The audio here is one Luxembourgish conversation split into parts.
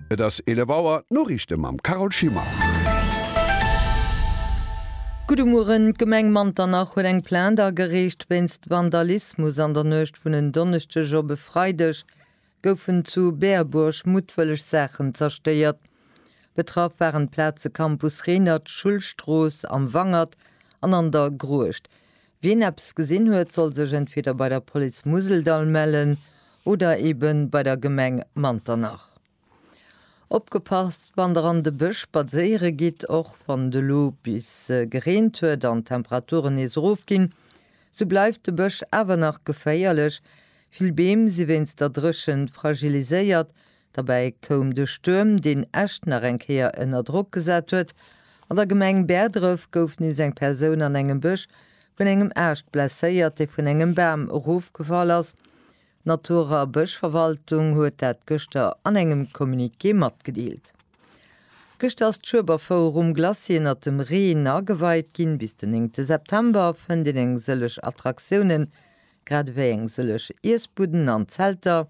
Et ass 11 Auer, d'Noriichte mam Carole Schimmer. Gudde Mueren, D'Gemeng Manternach huet eng Plainte agereecht wéinst Vandalismus. An der Nuecht vun en Donneschdeg op e Freideg goufen zu Berbuerg muttwëlleg Saachen zerstéiert. Betraff waren d'Plaze Campus Renert, Schullstrooss, Am Wangert an An der Gruecht. Wien eppes gesinn huet, soll sech entweder bei der Police Museldall mellen oder ebe bei der Gemeng Manternach. Opgepasst wann der an de Bësch spadséiere gitt, Och wann et elo bis gereent huet an d'Temperaturen nees erof ginn, sou bleift de Bësch awer nach geféierlech. Vill Beem si wéinst der Dréchent fragiliséiert, Derbäi koum de Stuerm, deen Esch nach eng Kéier ënner Drock gesat huet. An der Gemeng Bäerdref gouf nees eng Persoun an engem Bësch vun engem Aascht blesséiert, dee vun engem Bam erofgefall ass. D'Natur a Bëschverwaltung huet dat gëschter an engem Communiqué matgedeelt. Gëschter ass d'Schueberfouer um Glacis ënnert dem Reen ageweit ginn. Bis den néngte September fënnt een eng sëllech Attraktiounen, grad ewéi eng sëllech Iessbudden an Zelter,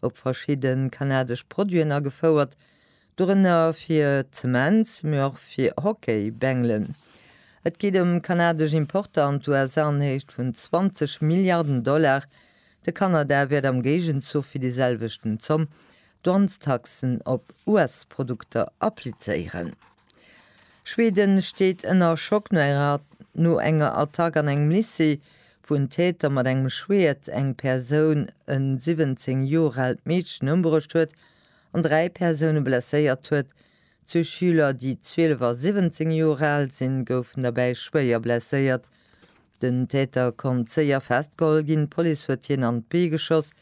op verschidde kanadesch Produiten agefouert, dorënner fir Zement, mee och fir Hockey-Bängelen. Et geet ëm kanadesch Importer an d'USA an Héicht vun 20 Milliarden Dollar. De Kanada wäert am Géigenzuch fir déi selwechten Zomm Douanestaxen op US-Produkter applizéieren. Schweden steet ënner Schock no enger Attack an engem Lycée, wou en Täter mat engem Schwert eng Persoun, e 17 Joer aalt Meedchen, ëmbruecht huet an dräi Persoune blesséiert huet. Zwee Schüler, déi 12 a 17 Joer al sinn, goufen derbäi schwéier blesséiert. Den Täter konnt séier festgeholl ginn, d'Police huet hien an d'Bee geschoss.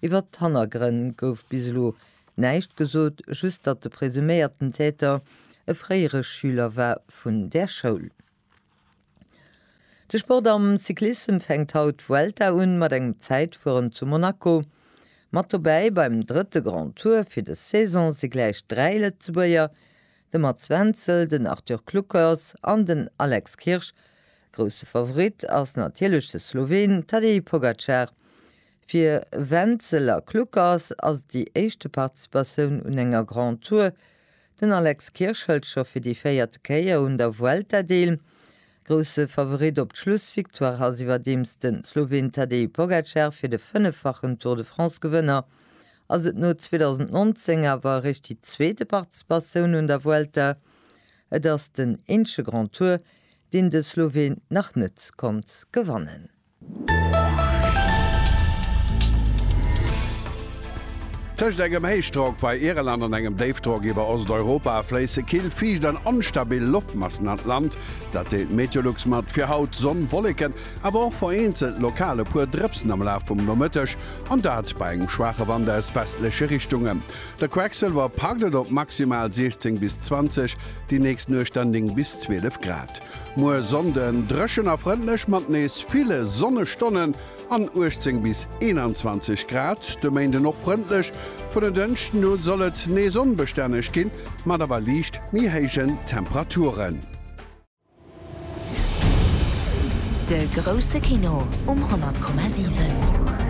Iwwert d'Hannergrënn gouf bis elo näischt gesot, just datt de presuméierten Täter e fréiere Schüler war vun där Schoul. De Sport am Cyclissem fänkt haut d'Vuelta un, mat engem Zäitfueren zu Monaco. Mat dobäi beim drëtte Grand Tour fir dës Saison si gläich dräi Lëtzebuerger, De Mats Wenzel, den Arthur Kluckers an den Alex Kirsch. Grousse Favorit ass natierlech de Sloween Tadej Pogacar. Fir Wenzel a Kluckers ass et déi éischte Participatioun un enger Grand Tour. Den Alex Kirsch hëlt scho fir déi véierte Kéier un der Vuelta deel. Grousse Favorit op d'Schlussvictoire ass iwwerdeems de Sloween Tadej Pogacar fir de fënneffachen Tour de France-Gewënner ass et no 2019 awer eréischt déi zweete Participatioun un der Vuelta. Et ass den eenzege Grand Tour, deen de Sloween nach net konnt gewannen. Tëscht engem Héichdrock bei Irland an engem Déifdrock iwwer Osteuropa fléisse kill, fiicht an onstabil Loftmassen an d'Land. Dat deelt d'Meteolux mat. Fir haut, Sonn, Wolleken, awer och vereenzelt lokal e puer Drëpsen am Laf vum Nomëtteg. An dat bei engem schwaache Wand aus westleche Richtunge. De Quecksilwer paddelt op maximal 16 bis 20, déi nächst Nuecht dann 9 bis 12 Grad. Muer Sonnden dréchen a frëndlech mat nees ville Sonnestonnen an 18 bis 21 Grad. De Méinden och frëndlech, vun den Dënschden u soll et nees onbestänneg ginn, mat awer liicht méi héijen Temperaturen. De grousse Kino um 100,7.